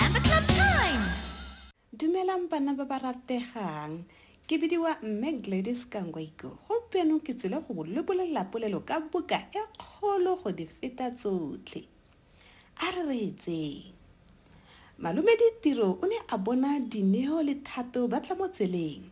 Amber Club Time! Dumelang bana ba ba rategang. Ke bidiwa Mme Gladys Kangwaiko. Gompieno ke tsile go le bolelela polelo ka buka e kgolo go di feta tsotlhe. A re re etseng. Malome Ditiro o ne a bona Dineo le Thato ba tla mo tseleng.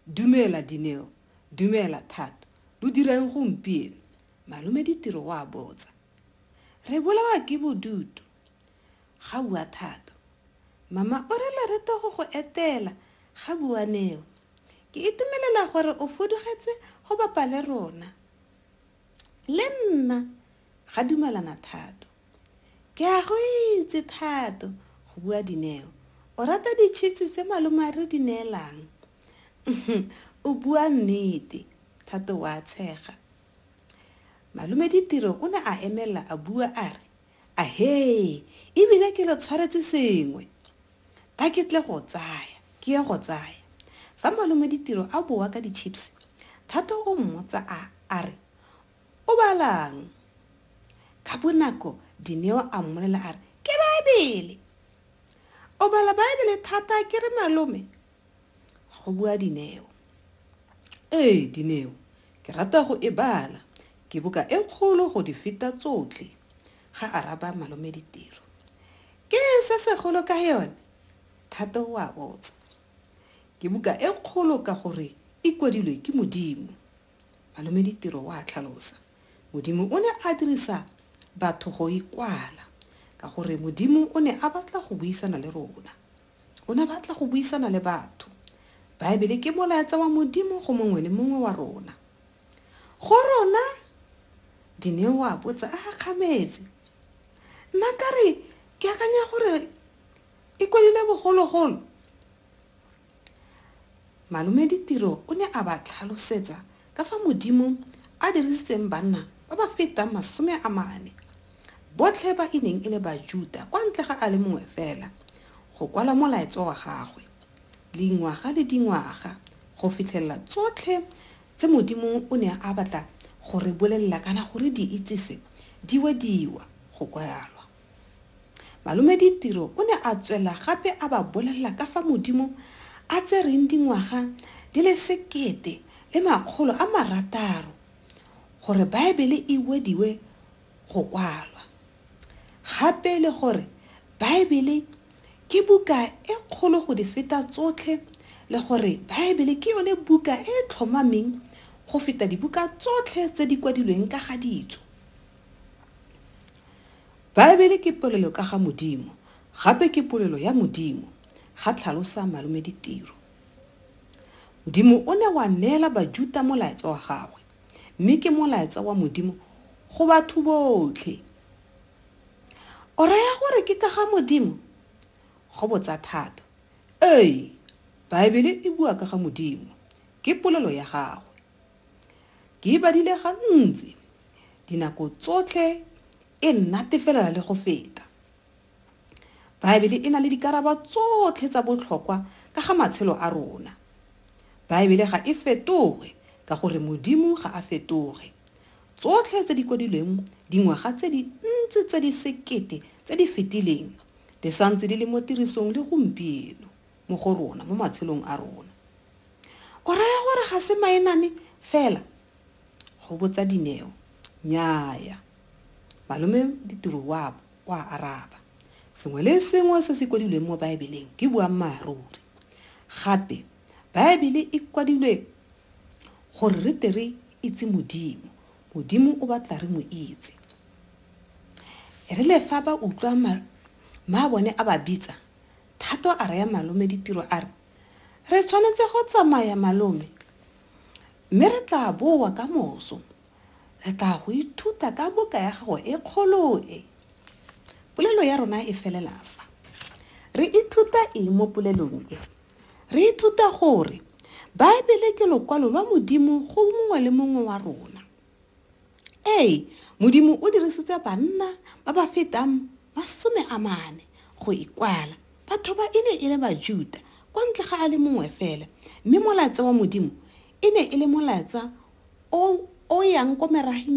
Dumela Dineo, dumela Thato, lo dirang gompieno? Malome Ditiro o a botsa. Re bolawa ke bodutu. Ga bua Thato. Mama o re Loreto go go etela, ga bua Neo. Ke itumelela gore o fudugetse go bapa le rona. Le nna, ga dumalana Thato. Ke a go itse Thato, go bua Dineo. O rata di-chips tse malome a re di neelang. Uhmm, o bua nnete, Thato o a tshega. Malome Ditiro o ne a emelela a bua a re. Ahee, e bile ke lo tshwaretse sengwe. A ke tle go tsaya, ke ye go tsaya. Fa Malome Ditiro a boa ka di-chips, Thato o mmotsa a a re, O balang? Ka bonako Dineo a mmolela a re, Ke Baebele! O bala Baebele thata akere Malome? go bua Dineo. Ee, Dineo, ke rata go e bala. Ke buka e kgolo go di feta tsotlhe, ga araba Malome Ditiro. Ke eng se segolo ka yone? Thato o a botsa. Ke buka e kgolo ka gore e kwadilwe ke Modimo. Malome Ditiro o a tlhalosa. Modimo o ne a dirisa batho go e kwala ka gore Modimo o ne a batla go buisana le rona. O ne a batla go buisana le batho. Baebele ke molaetsa wa Modimo go mongwe le mongwe wa rona. Go rona, Dineo a botsa a gakgametse. Nna ka re ke akanya gore e kwadile bogologolo. Malome Ditiro o ne a ba tlhalosetsa ka fa Modimo a dirisitseng banna ba ba fetang masome a mane, botlhe ba e neng e le Bajuda kwa ntle ga a le mongwe fela, go kwala Molaetso wa gagwe, dingwaga le dingwaga, go fitlhelela tsotlhe tse Modimo o ne a batla go re bolelela kana go re di itsise di wediwa go kwalwa. Malome Ditiro o ne a tswela gape a ba bolelela ka fa Modimo a tsereng dingwaga di le sekete le makgolo a marataro gore Baebele e wediwe go kwalwa, gape le gore Baebele ke buka e kgolo go di feta tsotlhe le gore Baebele ke yone buka e e tlhomameng go feta dibuka tsotlhe tse di kwadilweng ka ga ditso. Baebele ke polelo ka ga Modimo, gape ke polelo ya Modimo, ga tlhalosa Malome Ditiro. Modimo o ne wa neela Bajuta molaetsa wa gagwe, mme ke molaetsa wa Modimo go batho botlhe. O raya gore ke ka ga Modimo? Go botsa thata. Ee, Baebele e bua ka ga Modimo. Ke polelo ya gagwe. Ke e badile gantsi, dinako tsotlhe e nnatefelela le go feta. Baebele e na le dikarabo tsotlhe tsa botlhokwa ka ga matshelo a rona. Baebele ga e fetoge ka gore Modimo ga a fetoge. Tsotlhe tse di kwadilweng dingwaga tse dintsi tse di sekete tse di fetileng di santse di le mo tirisong le gompieno. mo go rona mo matshelong a rona o raya gore ga se maenane fela go botsa dineo nyaya malome ditiro wa wa araba sengwe le sengwe se se kwadilweng mo baebeleng ke boammaaruri gape baebele e kwadilwe gore re tere itse modimo modimo o batla re mo itse e re le fa ba utlwa ma bone a ba bitsa Thato a raya malome ditiro a re, Re tshwanetse go tsamaya malome, mme re tla boa ka moso. Re tla go ithuta ka buka ya gago e kgolo e. Polelo ya rona e felela fa. Re ithuta eng mo polelong e? Re ithuta gore Baebele ke lokwalo lwa Modimo go mongwe le mongwe wa rona. Ee, Modimo o dirisitse banna ba ba fetang masome a mane go ikwala. Batho ba e ne e le Bajuda kwa ntle ga a le mongwe fela, mme molaetsa wa Modimo e ne e le molaetsa o o yang ko merageng